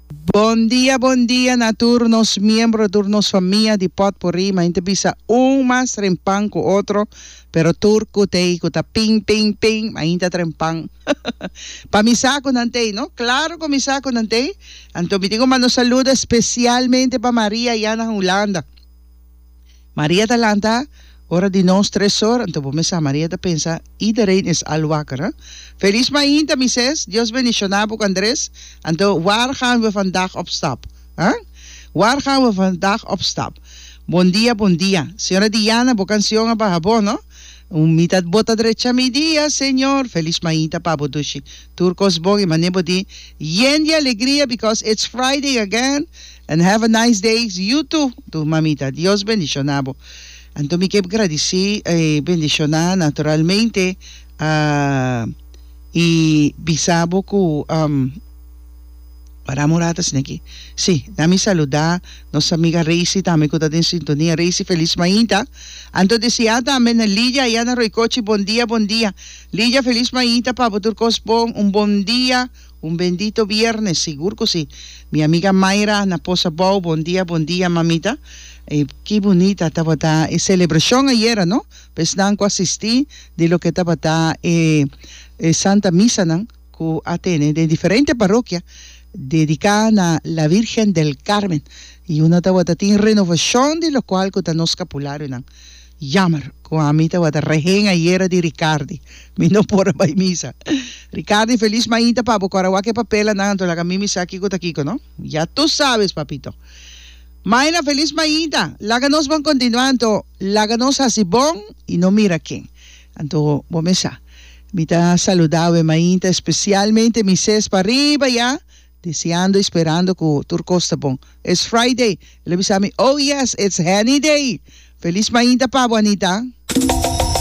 Bon dia bon dia na tur nos miembro tur nos famia di potpourri ma inte bisa un mas tren pan ku otro pero tur kutei ku ta ping ping ping ma ainta tren pan pa mi sa ku nan tei no klaro ku mi sa ku nan tei anto mi tin ku manda un saludo espesialmente pa Maria ya na Hulanda. Maria ta lanta, Ora di nos tres or, anto bo mesa, Maria ta pensa, iedereen is al wakker, hè? Feliz mainta, mises, Dios bendiciona bo cu Andres, anto waar gaan we vandaag op stap, hè? Waar gaan we vandaag op stap? Bon dia, bon dia, Señora Diana, bo cancion a baha bon, no? Un mitat bota drecha mi dia, Señor, Feliz mainta pa bo dushi, tur cos bon y mane bo di, Yen di alegria because it's Friday again, And have a nice days you too tur mamita Dios bendiciona bo anto mi kep gradici e bendiciona naturalmente a y bisa bo cu um wara amo rat asina aki si na mi saluda nos amiga Reisi tambe cu ta den sintonia Reisi feliz mainta anto desia tambe na Lidia aya na Roycochi bon dia bon dia Lidia feliz mainta pa bo tur cos bon un bon dia. Un bendito viernes sigur cu si. Mi amiga Mayra na post abou bon dia bon dia mamita y ki bunita tabata e celebracion ayera no pa esnan cu a sisti di loke tabata e e santa misanan cu a tene den diferente parokia dedica na la Virgen del Carmen y una tabata tin renovacion di locual cu ta nos scapulario nan. Jammer cu ami tabata rehen ayera di Ricardi, mi no por a bay misa. Ricardi, Feliz mainta pa bo, cu arawak e papelanan anto laga mi mi sa kico ta kico, no? Ya tu sabes, papito. Maina, Feliz mainta! Laga nos bon continua anto laga nos haci bon y no mira ken. Anto bo me sa. Mi ta saluda awe mainta, especialmente mi ses pa riba ya. Desiando y sperando cu tur cos ta bon. It's Friday! El a bisa mi, Oh yes, it's Henny Day! Feliz mainta pa bo, Anita!